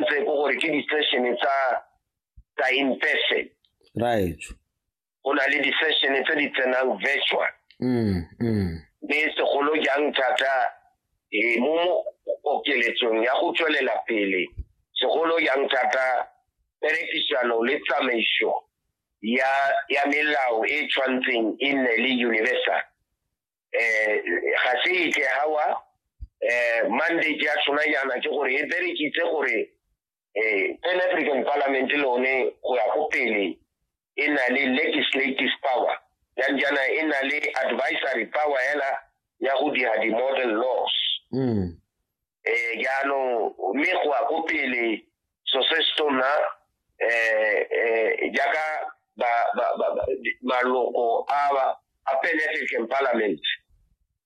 ntse ko gore ke di-session tsa tsa in person right go na le di-session tse di tsenang virtual mm, mm. mme segolo jang thata eh, mo mo okeletsong ya go tswelela pele segolo jang thata perekisano le tsamaiso ya ya melao e tshwantseng e nne le universal eh ga se ike hawa eh mandate ya tsona yana ke gore e berekitse gore eh pan african parliament lone go ya go pele e na le legislative power yang jana e na le advisory power hela ya go dira di-model laws mm. eh yalo mme go a go pele so se stona eh eh jaaka ba ba ba maloko a ba a African Parliament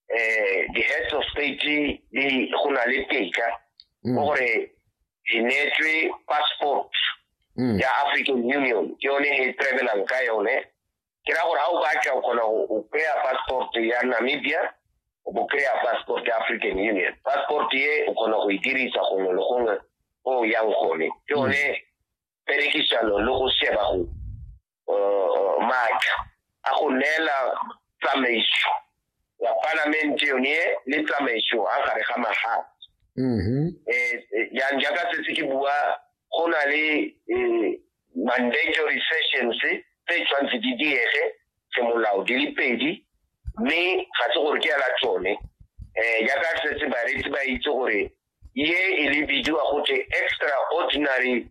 eh the heads of state di go na le teka mm. gore di netswe passport mm. ya African Union ke yone he travelang ka yone ke ra gore ga o batla o kgona go kry-a passport ya namibia o bo kry-a passport ya african union passport ye o kgona go e dirisa gongwe le gongwe o yang gone ke one perekisano le go sheba go uh, maatla a go neela tsamaiso wa palamente yone le tsamaiso a gare ga magae mm-hmm. eh, eh, jang jaaka setse ke bua go na le eh, mandatory sessions tse tshwanetse di diege semolao di le pedi mme ga se gore ke ela tsone um jaaka setse baretsi ba itse gore ye e le bidiwa gote extraordinary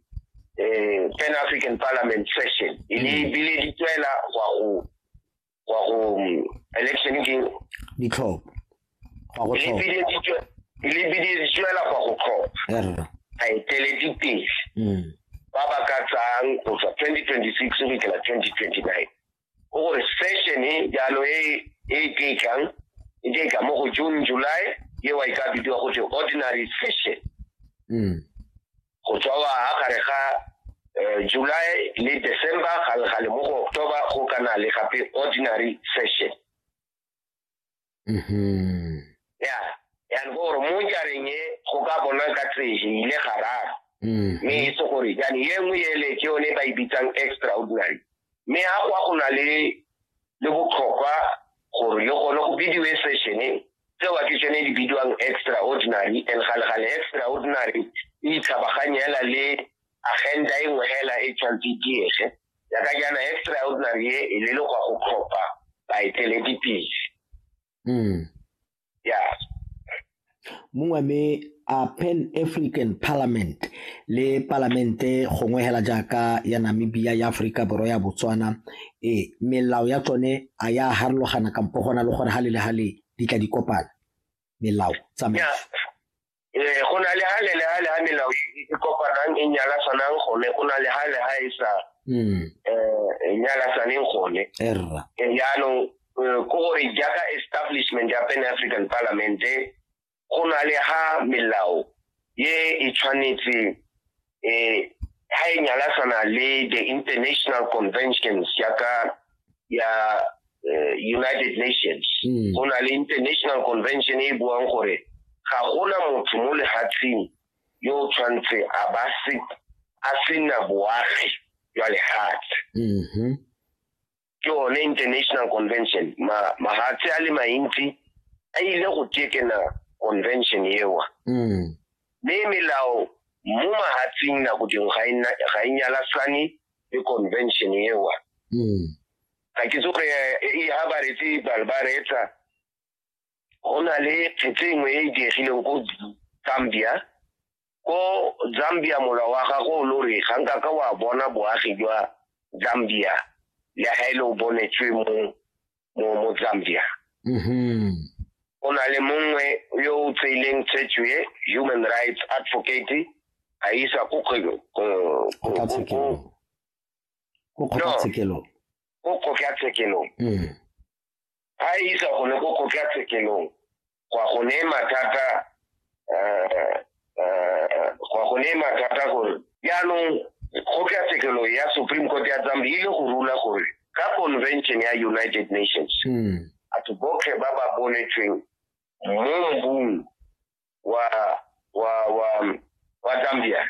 um pan african parliament session e le mm. bile di tswela gwa go wa go mm, election ke ditlhopho go go tlhopha le biditswela go go tlhopha a eteledi pele mm. ba ba ka tsang go tswa 2026 go ikela 2029 o gore session e jalo e e keikang e keika mo go june july ye wa e ka bidiwa go te ordinary session mm. go tswawa ha gare ga eh, july le december gale mo go october go kana le gape ordinary session mm-hmm. ya yan gore mo jareng e go ka bona ka tseje ile gararo mm-hmm. mme e se gore jane ye nngwe ele ke yone ba e bitsang extraordinary mme ga kwa go na le le botlhokwa gore le gone go bidiwe sešene tseo ke tsone di bidiwang extraordinary and galegale extraordinary e itshapaganyela le agenda e nngwe hela e tshwanetse e diege yaka jaana extraordinary e e le le go tlhopha baeteledipele hmm. yeah mongwe me a pan african parliament le palamente gongwe hela jaaka ya namibia ya aforika borwa ya botswana e melao ya tsone a ya harologana kampo gona le gore ga le le ga le di tla di kopana melao tsamaiso eh go na le hale le hale ha melao e kopanang e nyala sanang gone go na le hale ha e sa mm. eh e nyala saneng gone erra e eh, yaanong eh, ko gore jaaka establishment ya pan african parliament go na le ha melao ye e tshwanetse eh ha e nyalasana le the international conventions ya ka ya eh, United Nations mm. go na le international convention e buang gore ga gona motho mo lehatsheng yo o tshwanetse a ba se a sena boagi jwa lehatshe mm-hmm. ke one international convention mahatshe a le mantsi a ile go tekena convention ewa mm. mme melao mo mahatsing nako dingwe ga e nyalasane le convention ewa mm. ga ke tsoge e ha ba retse ba reetsa go na le phetse engwe e e diegileng ko zambia ko zambia molwa wa gago o lo re ga nka ka wa bona boagi jwa zambia le ga e le o bonetswe mo mo mo zambia mm-hmm. o na le mongwe yo o tseileng tsetswe human rights advocate a isa ko kgokgatshekelo ko kgokgatshekelo mm. a e isa gone ko kgotlatshekelong go a go ne mathata eh, eh, go a go ne mathata gore jaanong kgotlatshekelo ya supreme court ya zambia ile go rula gore ka convention ya united nations hmm. batho botlhe ba ba bonetsweng mo mbung wa wa wa wa zambia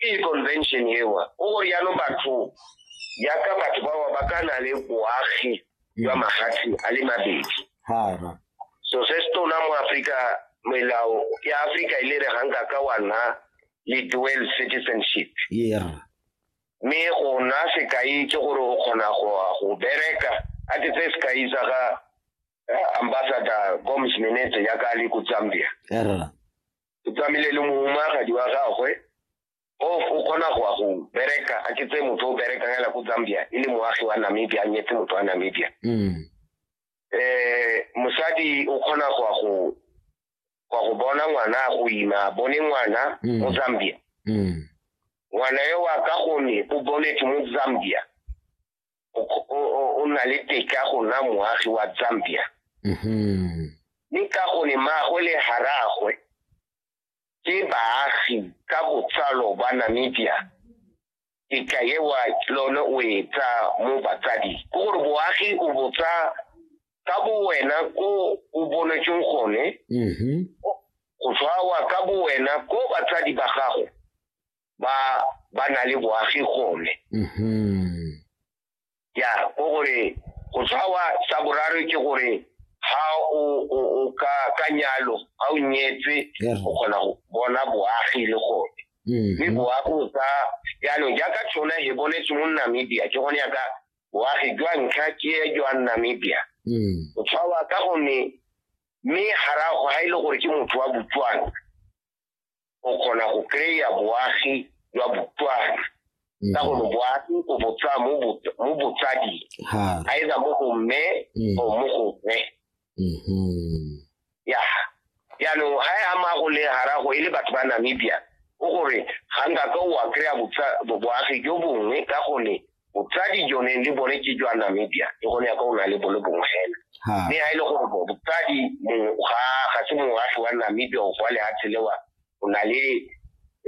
ke convention ewa o gore yaanong batho yaka batho bawa ba ka na le boagi jwa magatshi a le mabedi so se se tona mo aforika melao ya aforika e le re ga nka ka wa nna le dual citizenship mme go nna sekai ke gore o kgona go bereka a ke tse sekai sa ga eh, ambassador gomes menete yaka le ko zambia o tsamaile le mohumagadi wa gagwe o o kgona go ya go bereka a ke tse motho o berekang hela ko zambia e le moagi wa namibia a nyetse motho wa namibia um mosadi o kgona go ya go go ya go bona ngwana a go ima a bone ngwana Mm. mo zambia um ngwana yo wa ka gone o bonetse mo zambia o na le teka go nna moagi wa zambia mm-hmm. mme ka gone maagwe le haragwe ke baagi ka botsalo ba namibia teka ewa lone o e tsa mo batsadi ke gore boagi o botsa ka bo wena ko o bonetseng gone mm-hmm. go tshwawa ka bo wena ko batsadi ba gago ba ba na le boagi gone Mhm. ya ko gore go tshwawa sa boraro ke gore ha o o o ka ka nyalo ha o nyetse Ya re. o kgona go bona boagi le gone mme Mhm. boagi o ka jaanong jaaka tshona e bonetse mo namibia ke gone yaka boagi jwa ntlha ke e jwa namibia Mm. o tshwawa ka gonne mme garago ga e le gore ke motho wa botswana o kgona go kry-a boagi jwa botswana mm. ka gore boagi o botsa mo botsading either mo go mme mm. or mo go mme mm-hmm. ya jaanong ga e ama go le garago e le batho ba namibia o gore ga nka ka o a kry-a boagi jo bongwe ka gone botsadi jone le bone ke jwa namibia le gone ya ka o na le bone bongwe fela mme ga e le gore botsadi ga ga se moagi wa namibia o kwa lehatshe lewa o na le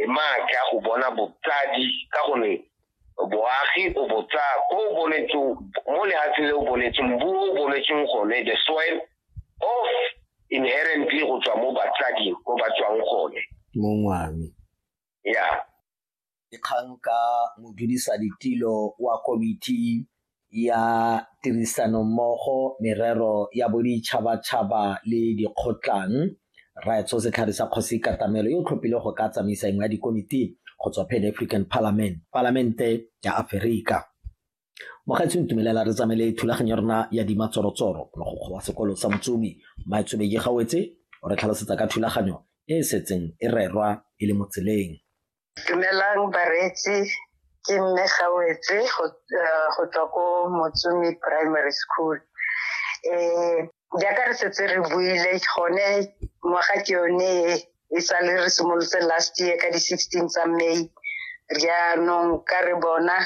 maatla go bona botsadi ka gone boagi o botsa ko o bonetseng mo lehatshe le o bonetseng bu o bonetseng gone the soil of inherently go tswa mo batsading ko ba tswang gone mongwami ya yeah. dikgang ka modudisaditirlo wa Komiti ya Tirisanommogo Merero ya Boditšhabatšhaba le Dikgotlang, Rrae Tso Setlhare sa Kgosi Katamelo yo o tlhophile go ka tsamaisa engwe ya dikomiti go tswa Pan African Parliament, Palamente ya Aferika. Mokgweetsi ntumelela re tsamaile thulaganyo ya rona ya dima tsorotsoro mogokgo wa sekolo sa Motsomi Maetsobeke Gawetse o re tlhalosetsa ka thulaganyo e e setseng e rerwa e le mo tseleng. Dumelang bareetsi ke mme Gawetse go eh, go tswa ko Motsomi Primary School. Eh jaaka re setse re buile gone ngwaga ke yone e, e sa le re simolotse last year ka di-16 tsa May jaanong ka re bona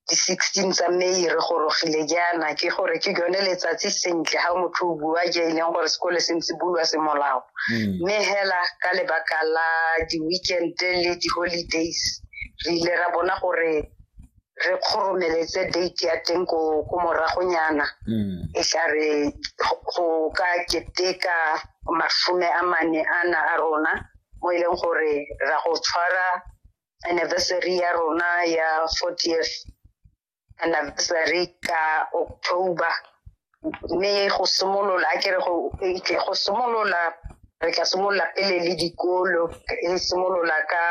di sixteen tsa may re gorogile jaana ke gore ke yone letsatsi sentle ga motho o bua je e leng gore sekole se ntse bulwa semolao hmm. mme hela ka lebaka la di-weekend le di-holidays re ile ra bona gore re kgoromeletse date ya teng ko moragonyana hmm. e tla re go ka keteka masome a mane ana a rona mo e leng gore ra go tshwara anniversary ya rona ya 40th anniversary ka october mme go simolola ke re go simolola re tla simolola pele le dikolo e simolola ka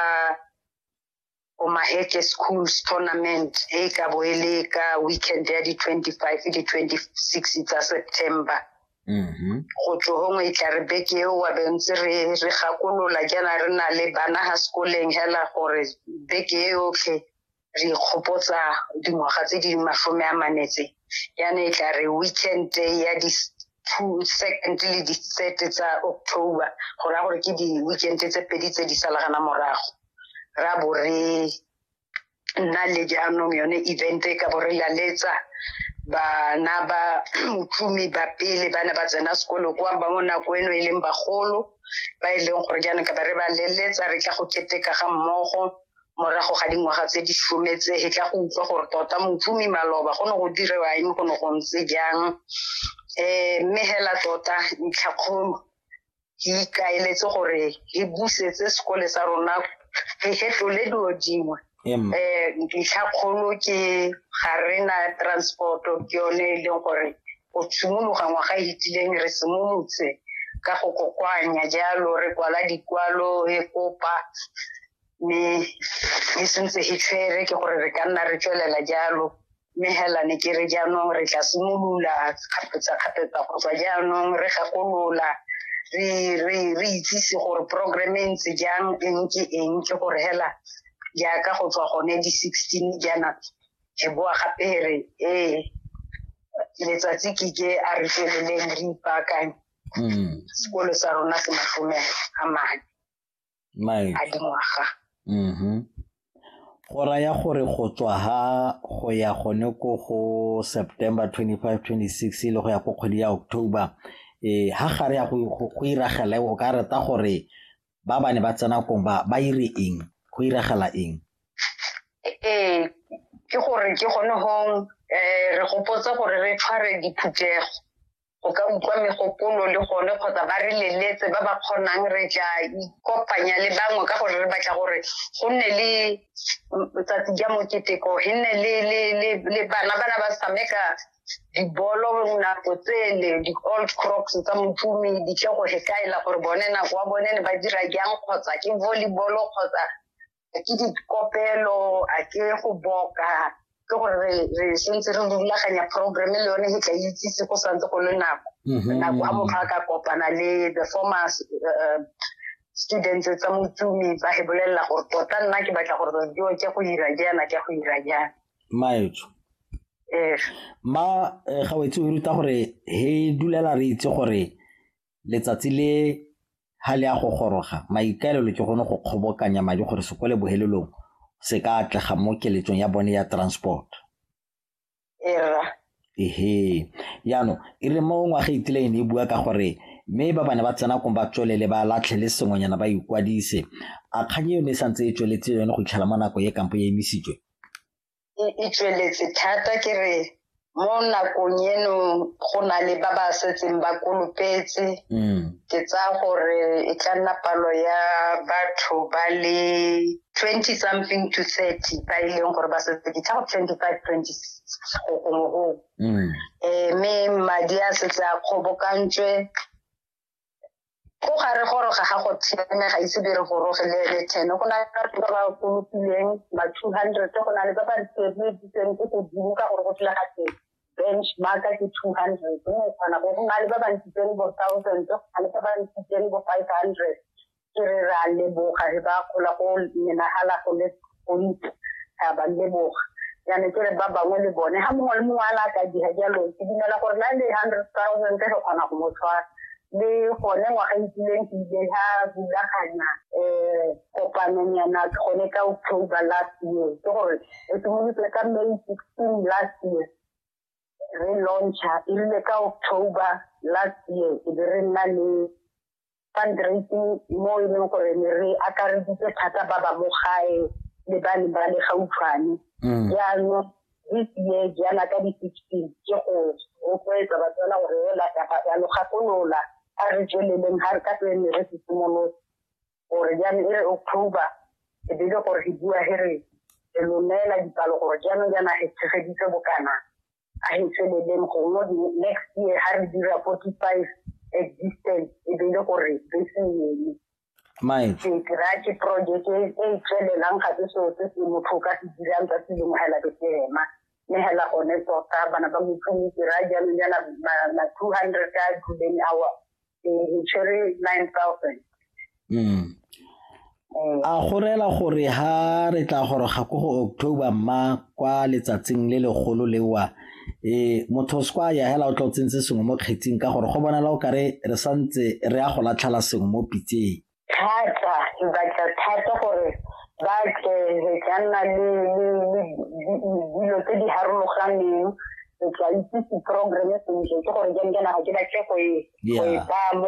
omaheke schools tournament e ka bo e le ka weekend ya di-twenty-five le di-twenty-six tsa september Mm-hmm. go tlo gongwe e tla re beke eo wa bentse re re gakolola jaana re na le bana ga sekoleng hela gore beke e yotlhe re ikgopotsa dingwaga tse di masome a manetse yana e tla re weekend ya di second le di-third tsa october go raya gore ke di-weekend tse pedi tse di salagana morago ra bo re nna le jaanong yone event e ka bo re laletsa bana ba motlumi ba pele ba ne ba tsena sekolo kwa ba mo nako eno e leng bagolo ba e leng gore jaanong ka ba re ba leletsa re tla go keteka ga mmogo morago ga dingwaga tse di sometse e tla go utlwa gore tota motlumi maloba go ne go direwa eng go ne go ntse jang um mme hela tota ntlhakgolo ke ikaeletse gore re busetse sekole sa rona re fetlole dilo dingwe um ntlha kgolo ke ga re na transport-o ke yone e leng gore go tshimologa ngwaga e itileng re simolotse ka go kokoanya jalo re kwala dikwalo e kopa mme e sentse e tshwere ke gore re ka nna re tswelela jalo mme hela ne ke re jaanong re tla simolola kgapetsa-kgapetsa go tswa jaanong re gakolola re re re itsise gore program e ntse jang eng ke eng ke gore hela jaaka go tswa gone di sixteen jaana ke boa gape re ee letsatsi ke ke a re tsweleleng re ipaakanye sekolo sa rona se mashome a mane Mike. a dingwaga Mhm. Go raya gore go tswa ha go ya gone ko go September 25, 26 e le go ya ko kgwedi ya October eh ha gare ya go go- go iragela o ka reta gore ba ba ne ba tsena kong ba ba ire eng go iragela eng ee ke gore ke gone gong um re gopotse gore re tshware diphuthego go ka utlwa megopolo le gone kgotsa ba re leletse ba ba kgonang re tla ikopanya le bangwe ka gore re batla gore go nne le tsatsi ja moketeko e nne le bana bana ba sameka dibolo nako tsele di-old crocs tsa motumi di tle go hekaela gore bone nako wa bone ne ba dira jang kgotsa ke volleyball kgotsa a ke dikopelo a ke go boka ke gore re re sentse re rulaganya program le yone e tla itsise go santse go le nako mhm. nako a motho a ka kopana le the former uh, students tsa motsumi ba he bolelela gore tota nna ke batla gore dio ke go ira jaana ke go ira jaana maetso ee ma eh, ga wetse o ruta gore he dulela re itse gore letsatsi le ha le a go goroga maikaelelo ke gone go kgobokanya madi gore se kwele bohelelong se ka atlega mo keletsong ya bone ya transport era ehe yaanong e re mo ngwaga itile e ne e bua ka gore mme ba bane ba tsena kong ba tswelele ba latlhe le sengwenyana ba ikwadise a kgang eo ne e santse e tsweletse yone go itlhela mo nako e kampo e emisitswe e e tsweletse thata ke re mo nakong eno go na le ba ba setseng ba kolopetse mm. ke tsaya gore e tla nna palo ya batho ba le twenty something to thirty ba e leng gore ba setse ke tlhago twenty five twenty six go gongwe gongwe mm. um mme madi a setse a kgobokantswe ko ga re goroga ga go theme ga ise dire goroge le le ten go na le batho ba ba kolopileng ba two hundred go na le ba ba sebeditseng ko godimo ka gore go tla ga teng benchmark ke two hundred mme kgona go go na le ba ba ntshitseng bo thousand go na le ba ba ntshitseng bo five hundred ke re re a leboga re ba gola go menagala go le gontsi ra ba leboga jaanong ke re ba bangwe le bone ga mongwe le mongwe a la ka dira jalo ke dumela gore la le hundred thousand re kgona go mo tshwara le gone ngwaga itileng ke ile ga rulaganya um kopanong yana gone ka october last year ke gore e simolotse ka may sixteen last year re launcha e rile ka october last year e be re nna le fundraising mo e leng gore ne re akareditse thata ba ba mo gae le ba ne ba le gautshwane mm. jaanong this year jaana ka di-sixteen ke go rotloetsa batswana gore ela kapa ya logakolola a re tsweleleng ga re ka tswe ne re se simolotse gore jaanong e re october e bele gore re bua he re re lomela dipalo gore jaanong jaana re tshegeditse bokana I said them gongwe next year ha re dira 45 existence e be le gore bese yone Mike. Ke kry-a ke project e e tswelelang ga se seo se se motho ka se dirang ka se lengwe hela ke se ema mme hela gone tota bana ba motho mo kry-a jaanong jana ma two hundred a duleng awa tshwere nine thousand mm. eh. a go rela gore ha re tla goroga ko go october mma kwa letsatsing le legolo lewa e motho o sekwa ya hela o tla o tsentse sengwe mo kgetsing ka gore go bonala o kare re santse re ya go latlhela sengwe mo pitseng thata ke batla thata gore ba tle re tla nna le dilo tse di harologaneng re tla itsise programme sentle ke gore jang kana ga ke batle go e baya mo